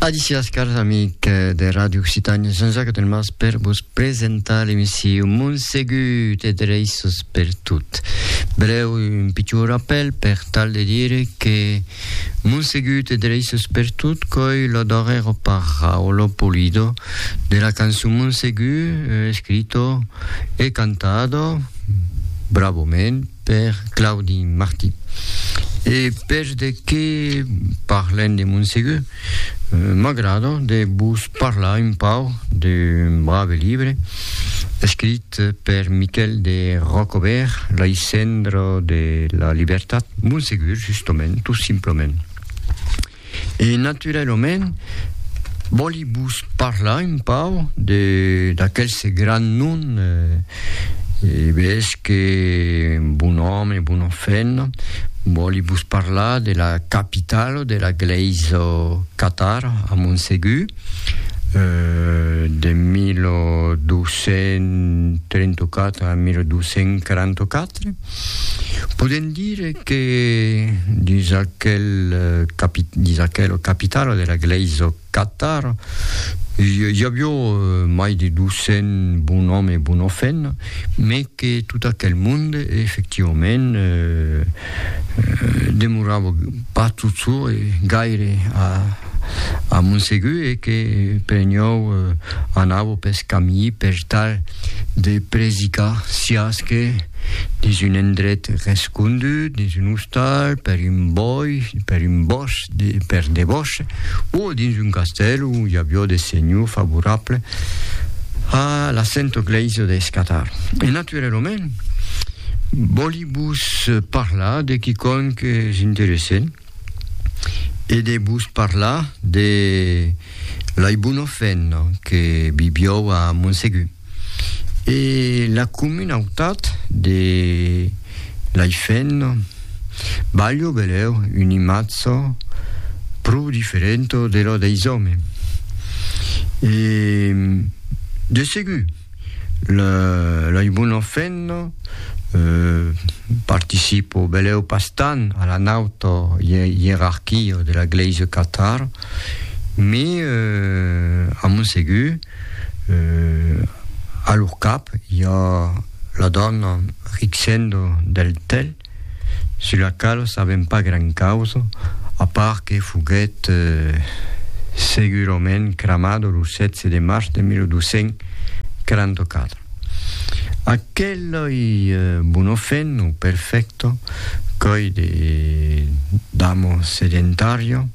Adicias, cars amic de Radio Occitània, Jean-Jacques Delmas per vos presentar l'emission Montsegut e Dreissos per tot. Breu, un pitjor rappel per tal de dire que Montsegut e Dreissos per tot coi lo darrero parraolo polido de la cançon Montsegut, eh, escrito e cantado, bravament, Per Claudi Martí. E pes de que parlem de Montsegur, m'agrada de vos parlar un pauc d'un brave libre escrit per Miquèl de Rocobèrt, Lei cendres de la libertat, Montsegur, justament, tot simplament. E naturalament, vòli vos parlar un pau de d'aquelse grand nom e bes que bon òme, bona femna, vòli vos parlar de la capitalo de la glèisa catara a Montsegur, de 1234 a 1244. Podem dire que dins aquel dins aquela capitala de la Glèisa Catar i avió mai de 200 bonòm e bonòfena, me que tot aquel monde efectivament demorava pas tot çò e gaire a a Montsegur e que per nhau anavo pes camí per tal de predicar siás que dins un endret rescondut, dins un ostal, per un bòi, per un bòs, de, per de bòs, o dins un castèl où i avió de senhor favorable a la Sento Glèisa de Escatar. E naturalament, vòli vos parlar de quicòm que és interessent, e de vos parlar de l'Aibunofèn que vivió a Montsegur. E la comunautat de l'Aifèn balhó beleu un imatge pro diferent de lo deis òmes. E de segur L'ai bona fenna, participo beleu pas tant a la nauta ierarquia de la Glèisa Catar, me a mon segur a lor cap i a la dòna Rixendo del Tel, sus la qual sabèm pas gran causa, a part que foguèt segurament cramada lo 16 de març de 1244. Aquel oi bono fen o perfècto qu'oi de damo sedentario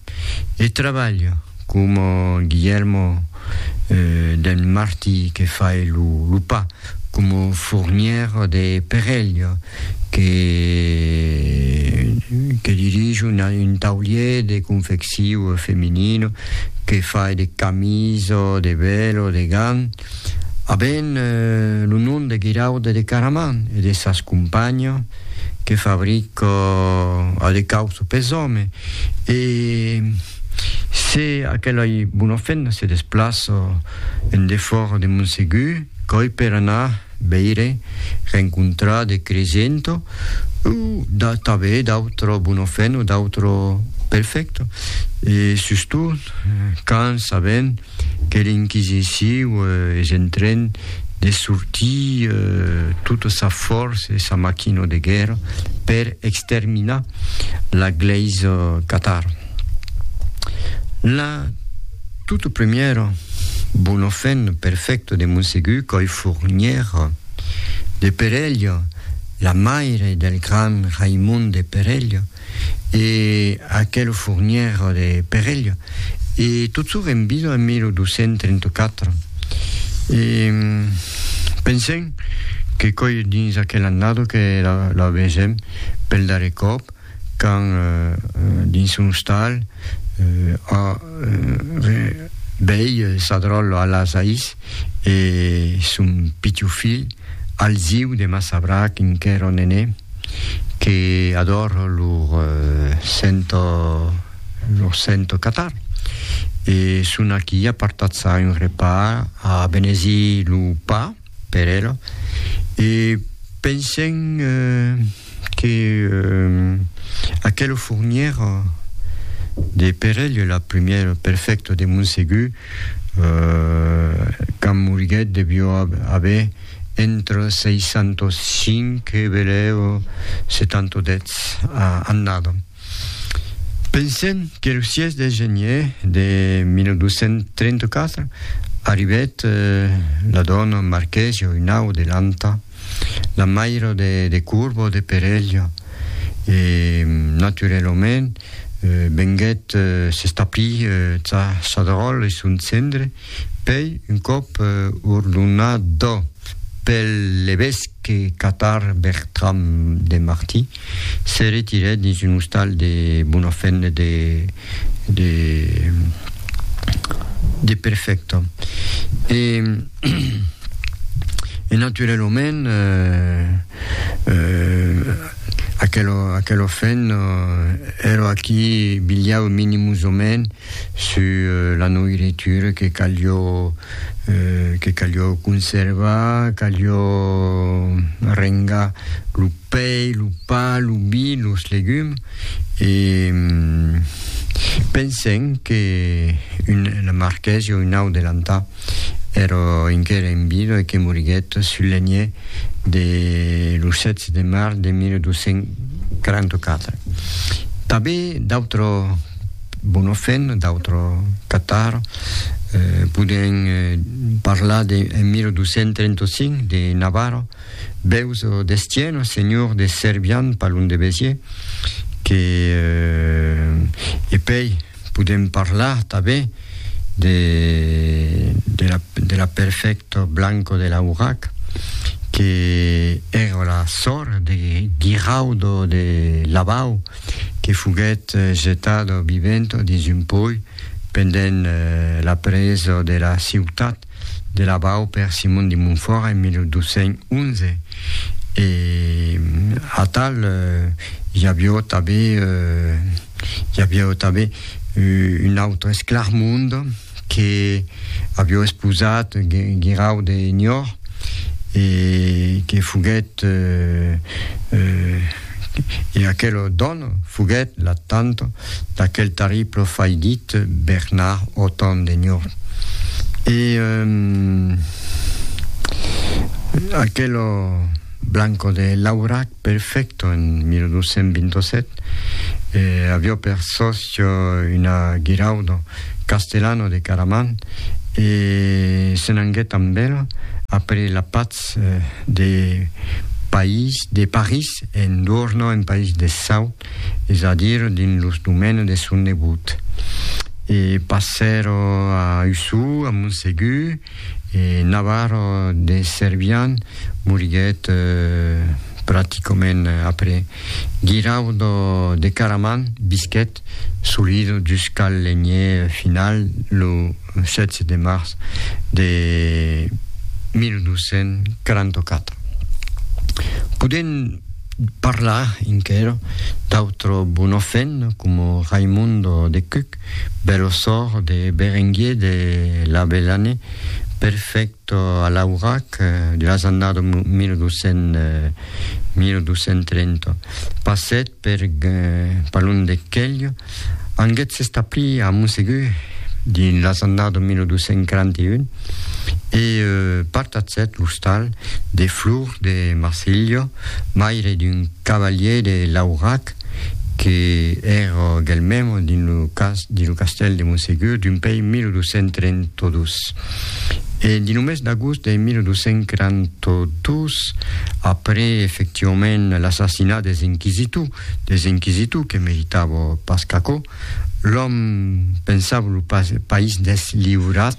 e trabalha, coma Guillermo d'en Marti que fai lo pa, coma Fournier de Perello que que dirige un taulier de confecciu feminino, que fai de camis o de velo, de gants, A ben lo nom de Guiraude de Caraman e de sas companha que fabrica a de cauço pes òme e se aquelai bona femna se desplaça en defòra de Monsegur qu'òi per anar veire, rencontrar de cresento o tanben d'autra bona femna o d'autra perfècta e sustot quand sabèm que l'inquisiciu es en tren de sortir tota sa fòrça e sa maquina de guèrra per exterminar la glèisa catar. La tota premièra bona fen perfècta de Monsegur Còi Fornièra de Perelha, la maire del gran Raimond de Perelha, e aquel fournièr de Perelha e tot çò qu'èm vidu en 1234. E pensèm que coi dins aquel annado que la vesèm pel darrèr còp quand dins son ostal a vei sa dròlla a las ais e son pitiu filh Alziu de Massabrac enquèra nené. que ador lor sento lor sento catar e son aquí a partatzar un repa a benezir lo pa per ela e pensem que aquelo fournièr de perelh la prumièr perfècto de Montsegur qu'amolguèt devió aver Entre 605 e velèu 710 annada. Pensèm qu'el sièis de genier de 1234 arribèt la dòna Marquèsia Unau de Lanta, la maira de Corbo de Perelha, e naturelament venguèt s'establir tà Sadròl e son cendre, Pei un còp ordonat pel levesque catar Bertram de Martí, se retirèt dins un ostal de bona fenda de Perfècta. E naturalament aquela fenda èra aquí bilhava minimusament Sus la noiritura que calió que calió conservar, calió rengar lo pei, lo pa, lo vi, los legums e pensèm que un la marquèsi o un au de l'Antà èra enquera en vida e que moriguèt sul leniè de lo 16 de març de 1244. Tanben d'autres Bonhoffen, d'autres Catar, podèn parlar de, en 1235, de Navarro, Beus d'Estienne, senhor de Cervian, pas lon de Béziers, que, e pei podèm parlar tanben de, de la perfècta Blanco de Laurac, que èra la sòr de Guiraudo de Lavau, que foguèt jetada viventa dins un pòi pendent la presa de la ciutat de Lavau per Simon de Montfòrt en 1211 e atal i aviá tanben i aviá tanben un autre esclarmond que avió esposat Guirau de Niort e que foguèt e aquela dòna foguèt la tanta d'aquel tarri profaidit Bernard Otan de Niort. E aquela blanca de Laurac Perfecto en 1227 e avió per sòcio una Giraudo Castellano de Caraman e se n'anguèt amb el après la patz de País de París en Duorno en País de Sau, es a dire dins los domènes de son nebot. E passèro a Usou, a Montsegur, E Navarro de Servian moriguèt practicament après. Guiraudo de Caraman visquèt solido dus cal lenher final lo 16 de març de 1244. Podèm parlar enquera d'autro Bonofèn coma Raimundo de Cuc, bèl ossor de Berenguier de Labellane, perfècto a l'aurac de las annadas 1200-1230, passèt per Palon de Quelho, anguèt s'establir a Monsegur dins las annadas 1241 e partatzèt l'ostal de Flor de Marsilho, maire d'un cavalièr de l'aurac, Josep, que èra galmèm dins lo cas dins lo castèl de Monsegur d'un pei 1232. E dins lo mes d'agost de 1242, après efectivament l'assassinat des inquisitors, des inquisitors que meritava pas qu'aquò, l'òme pensava lo país n'es liurat,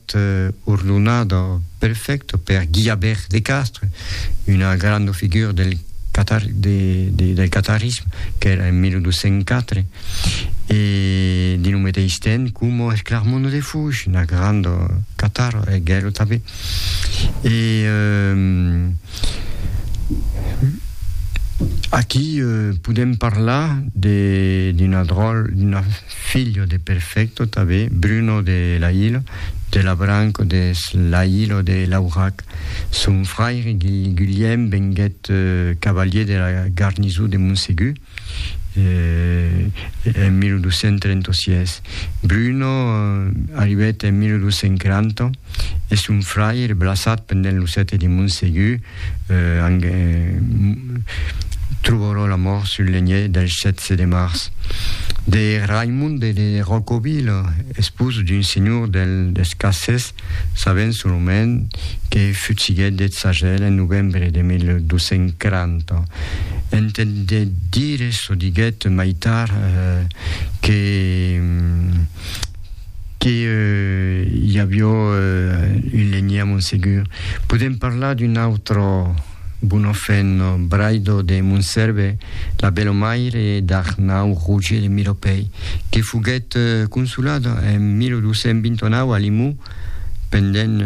Eth orlonado perfècto per Guillabert de Castres, una granda figura del catarisme, qu'èra en 1204, e dins lo meteis temps coma eth Clarmont de Fouges, una granda catar, e Gelo tanben. E aquí podem parlar d'una dròl, d'una... Filho de Perfecto tabé, Bruno de Lailo, de la branca des Lailo de Laurac. Son fraire Guilhèm venguèt cavalier de la garnisó de Monsegur en 1236. Bruno arribèt en 1240 e son fraire, blassat pendent lo sète de Monsegur, Trobarò la mòrt sul lenhèr del 16 de març de Raimonde de Rocovila, espós d'un senhor del Descassés, sabent solament que futsiguèt deth sagèl en novembre de 1240. Entendèt dire çò diguèt mai tard que que i avió un lenhier a Montsegur. Podèm parlar d'un autre bon ofèn, Braido de Montserve, la belomaire d'Arnau Roger de Milopèi, que foguèt consolada en 1229 a Limó pendent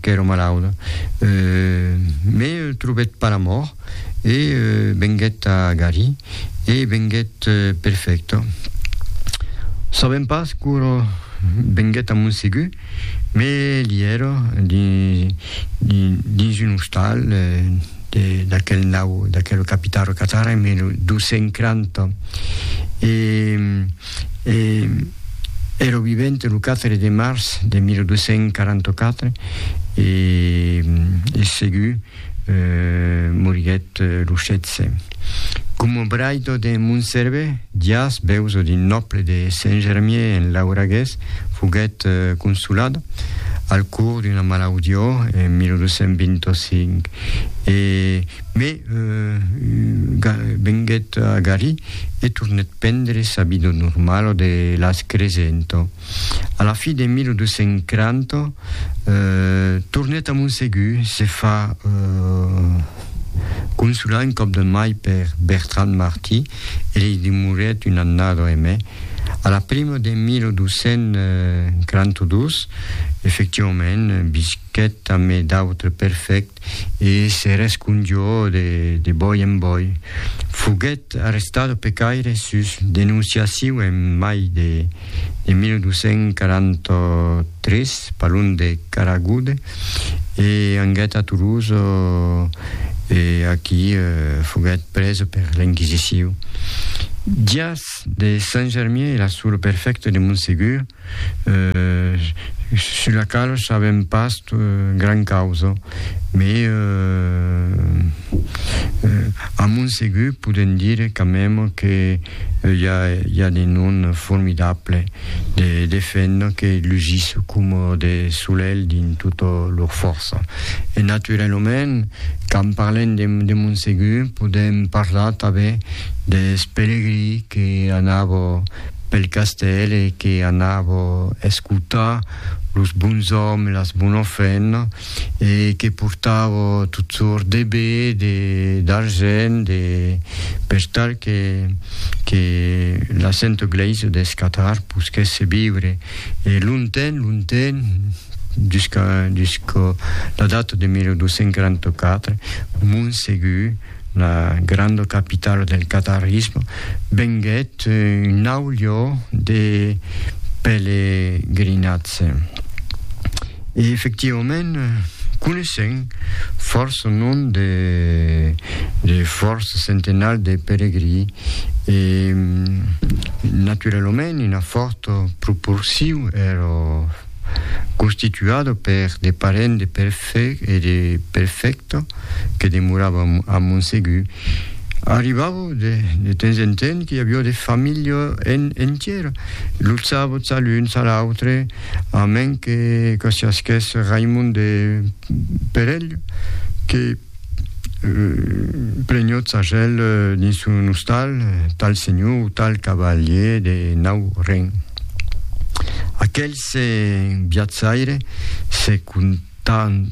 qu'èra malauda, mai trobèt pas la mòrt. e venguèt a Gary e venguèt perfècto. Sabèm pas quora venguèt a Montsegur, me li èra dins un ostal d'aquel nau, d'aquel capità Rocatara en 1240, e èra vivent lo 4 de març de 1244 e segur moriguèt lo 16. Coma braido de Montserve, Dias, beuso d'un nòble de Saint-Germier en Lauragués, foguèt consolada al cors d'una malaudió en 1225 e me venguèt a Garí e tornèt prendre sa vida normala de las Cresento. A la fin de 1240, tornèt a Montsegur, se fa consolar un còp de mai per Bertran Martí e li demorèt un annada e mai. A la prima de 1242, efectivament, visquèt amé d'autres perfèct e se rescondió de bòi en bòi. Foguèt arrestada pecaire sus denonciaciu en mai de de 1243, parlon de Caragoude, e anguèt a Toulouse e aquí foguèt prés per l'Enquisiciu. Dias de Sant Germier e la sura perfècta de Montsegur, sus la qual sabèm pas gran causa, me a Montsegur podèm dire quand meme que i a, i a de non formidable de de fent que lusís coma de solelh dins tota lor fòrça. E naturalament, quand parlem de de Montsegur, podèm parlar tanben deth pelegrí que anava pel castèl e que anava escotar los bons òmes e las bona fent, e que portava tot sort de be, de d'argent, de per tal que que la Santa Glèisa deth Catar posquèsse viure e lonten, lonten jusca jusca la data de 1244 Montsegur la granda capitala del qatarism, venguèt un naut lieu de pelegrinatge. E efectivament, coneissèm fòrça nom de, de fòrça centenals de pelegrí e naturalament una fòrta proporcion èra constituado per de parents de Perfect e de Perfecto que demoravan a Montsegur, arribava de, de temps en temps qu'i aviá de familha en, entièra, lo sabot a l'un, a l'autre, a men que, que siasquèsse Raimond de Perelh, que, Plenhot sagèl dins son ostal, tal senhor o tal cavalier de nau Ren. Aquel se viatjaire se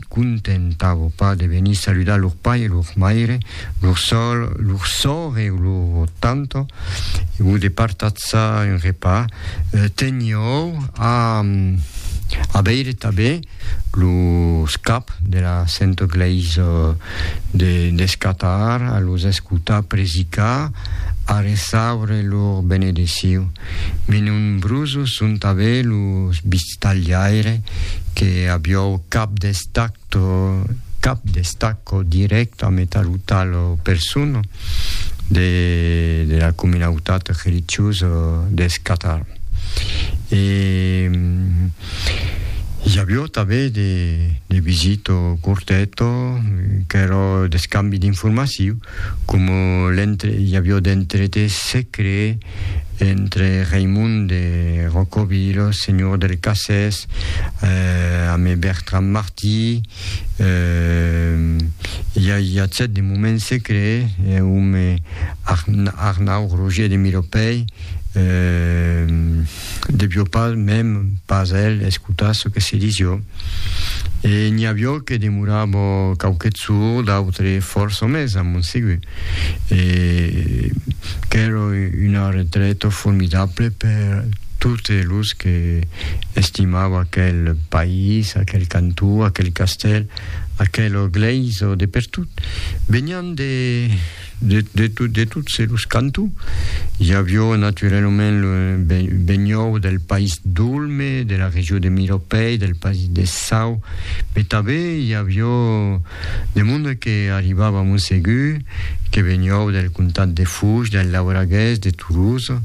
contentava pas de venir saludar lor pair e lor maire, lor sòr, lor sòr e lor tanta, o de partatzar un repar, teniou a a veire tanben los caps de la Santa Glèisa de descatar a los escotar predicar, a reçaure lor benedeciu, me nombrosos son tanben los bistalhaire que aviou cap d'estacto cap d'estacco dirèct a meta lo tal persona de de la comunautat religiosa descatar. E I avió tanben de, de visito corteto, qu'èra d'escambi d'informaciu, coma l'entre, i avió d'entrete secret entre Raimond de Rocovillo, senhor del Cassès, eh, ame Bertran Martí, eh, i a, i a cèt de moment secret, eh, ome Arn, Arnau Roger de Milopèi, eh, Devió pas mèm pas el escotar çò que se disió, e n'i avió que demorabó quauquet sour d'autre fòrça mès a mon segur, e qu'èra una retreta formidable per totes los que estimava aquel país, aquel cantó, aquel castèl, aquela glèisa de pertot. Venián de. De, de, to, de tots los cantons. Hi avió naturalament lo benhòu del país d'Olme, de la regió de Miropei, del país de Sau, pe tabé hi avió de monde que arribava a Montsegur, que benhòu del comtat de Fouge, del Lauragués, de Toulouse,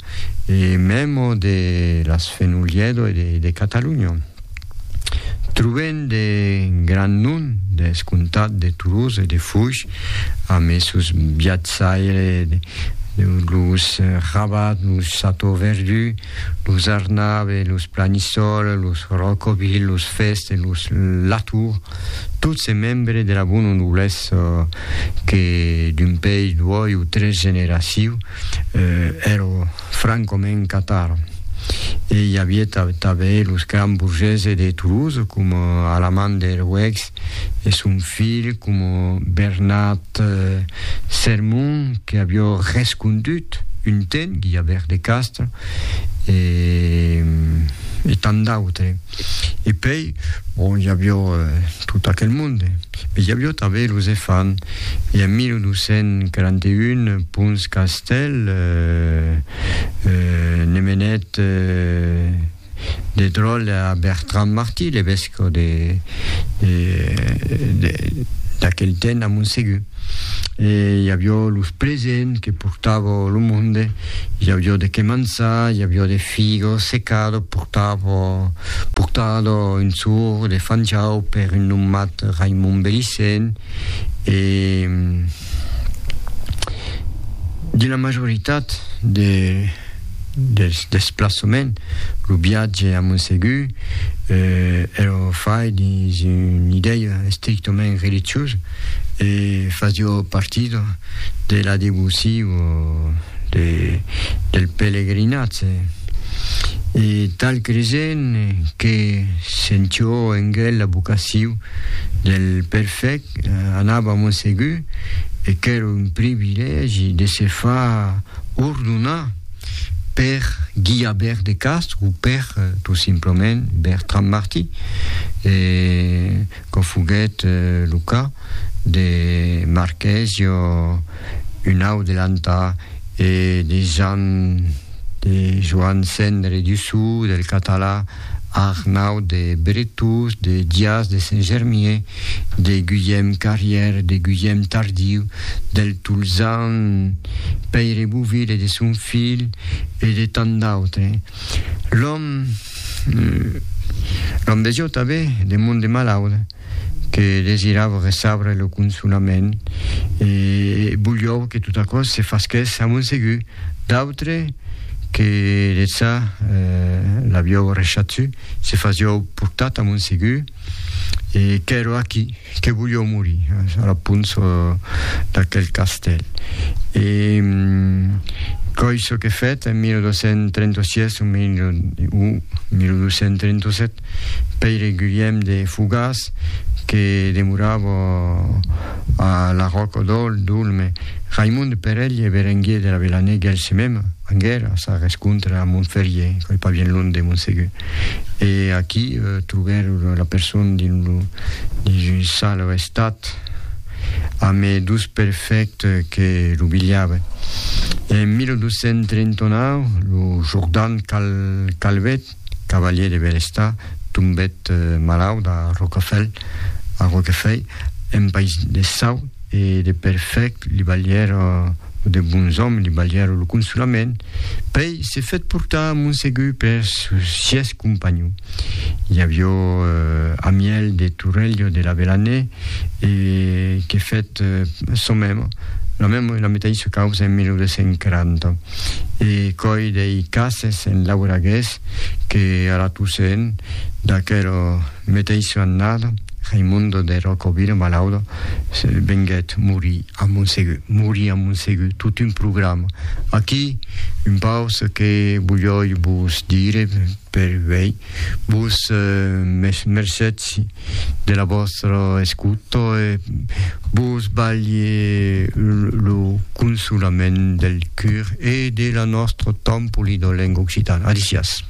e memo de las Fenoliedo e de, de Catalunya. Trobem de grands noms deth comtat de Toulouse e de Foix amb es sòus viatjaires deus los Rabat, los Chateauverdu, los Arnabe, los Planisòl, los Rocoville, los Fest e los Latour, tots es membres de la bona noblesa que d'un país, duòi o tres generacius, èrò Franc coma en Qatar. E i avié tanben los grands bourgeses de Toulouse, coma Alaman Derouex e son filh, coma Bernat Sermon, que avió rescondut un temps Guillabert de Castro e tant d'autres. E pei, bon, i avió tot aquel monde, me i avió tanben los efants. E en 1241, Pons Castèl ne menèt de dròl a Bertran Martí, l'evescò d'aquel temps a Montsegur. e i avió los presents que portava lo monde, i avió de que mançar, i avió de figo secado portava, portado un sor de Fanjau per un nommat Raimon Belicent, e de la majoritat de dels desplaçaments, lo viatge a Montsegur, eh, èra fai dins una idèia estrictament religiosa, E fasio partido de la devoci o de, del pelegrinatge. E tal cresent que sentió en gel la vocaciu del perfec, anava mon segur, e qu'èra un privilègi de se far ordonar per Guia Bèrt de Castro o per, tot simplament, Bertran Martí. E Quò foguèt lo cas de Marchesio, un au de Lantà, e de Jan de Joan Cendre du Sou, del Català, Arnau de Bretós, de Dias de Saint-Germier, de Guilhèm Carrière, de Guilhèm Tardiu, del Tolzan Pèire Bouville e de son filh, e de tant d'autres. L'òme. L'òme de Jòta ve de mond de malaut que desirava ressabre lo consolament e voliou que tot aquò se fasquèsse a Montsegur. D'autres que de ça l'aviou rechatz se fasiou portat a Montsegur. e qu'èro aquí, que volió morir eh, a la punç d'aquel castèl. E mm, coi çò que fèt en 1236 o 1237, Pèire Guilhèm de Fogàs, que demorava a la Ròca d'Òl, Dolme, Raimond de Perelh e Berenguier de la Velané, gèlse mèm, anguèra, sa rescontra a Montferrier, coi pas bien lond de Montsegur. e aquí trobèr la persona dins lo dins un sal restat ame dos perfèct que lo bilhaven en 1239 lo jordan cal calvet cavalier de bèl estat tombèt malaut a rocafèl a roquefèi en país de sau e de perfèct li balhèr De bons òmes li balhèron lo consolament, pei se fèt portar a Monsegur per sos sièis companhon. I avió Amièl de Torrelio de Lavelanè e que fèt son mèmo, la mèmo e la metaissa causa en 1240, e coi dei cases en lauragués que a la Toussaint d'aquero. Meteissa annada, Raimundo de Rocovila, malaudo, venguèt morir a Montsegur. Morir a Montsegur, tot un programa. Aquí, un paus que volhòi vos dire, per uèi, vos mercetsi de la vòstra escuta e vos balhi lo consolament del cur e de la nòstra tan polida lenga occitana. Adicias.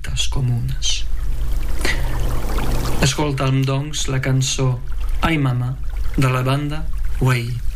Tras comunas. Escoltam, doncs, la cançó Ai Mama de la banda Way.